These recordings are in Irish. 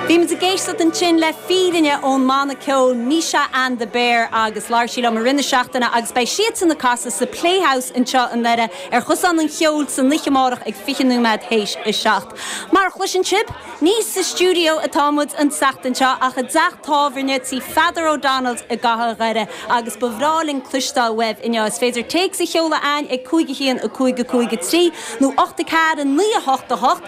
Bhí muid ag éisteacht ansin le Fírinne ón mbanna ceoil Misha and the Bear agus labhair sí liom i rith na seachtaine agus beidh siadsan ag casadh sa Playhouse anseo i nDoire ar Chosán an Cheoil san oiche amárach ag 20 nóiméad th'éis a seacht. Mar a chloiseann sibh, ní sa stiúideo atá muid an tseachtain seo ach i dteach tábhairne tí Pheadar O'Donnell's i gcathair Dhoire agus ba bhreá linn cloisteáil uaibh inniu. Is féidir téacs a sheoladh chugainn ag 5 1 5 5 3 nó 8 4 9 8 8.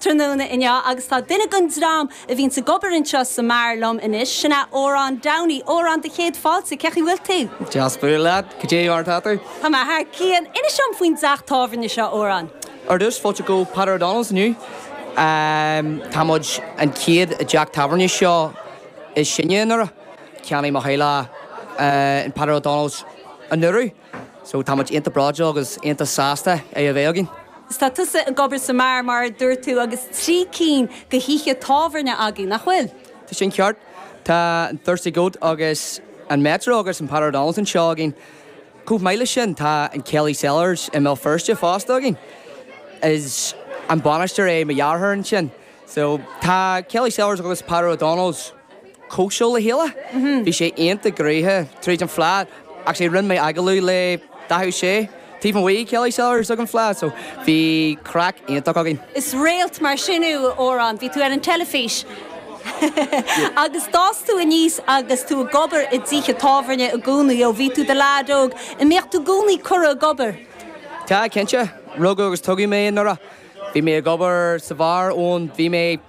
tráthnóna inniu agus tá duine den dream a bhíonn ag obair anseo sa mbeár liom anois, sin é Odhrán Downey. Odhrán, do chéad fáilte, cén chaoi a bhfuil tú? Deas bualadh leat, cad é mar atá tú? Tá mé thar cionn. Inis dom faoin dteach tábhairne seo, Odhrán. Ar dtús, fáilte go Peadar O'Donnell's inniu. Tá muid an chéad teach tábhairne seo is sine i nDoire. Cheannaigh mo theaghlach an Peadar O'Donnell's anuraidh. So tá muid iontach bródúil agus iontach sásta é a bheith againn. Is tá tusa ag obair sa mbeár mar a dúirt tú agus trí cinn de thithe tábhairne agaibh, nach bhfuil? Tá sin ceart. Tá an Thirsty Goat agus an Metro agus an Peadar O'Donnell's anseo againn. Chomh maith leis sin tá an Kelly's Cellars i mBéal Feirste fosta againn. Is an bainisteoir é mo dheartháir ansin. So, tá Kelly's Cellars agus Peadar O'Donnell's cosúil le chéile. Bhí sé iontach gnoitheach tríd an fleadh. Actually, rinne mé agallamh le Dáithí Ó Sé taobh amuigh ag Kelly's Cellars ag an fleadh, so bhí craic iontach againn. Is réalt mar sin thú, Odhrán. Bhí tú ar an teilifís agus d'fhás tú aníos agus tú ag obair i dtithe tábhairne i gcónaí ó bhí tú i do lad óg. An mbíteá i gcónaí curtha ag obair? Tá, cinnte. Rugadh agus tógadh mé i nDoire. Bhí mé ag obair sa bheár ó bhí mé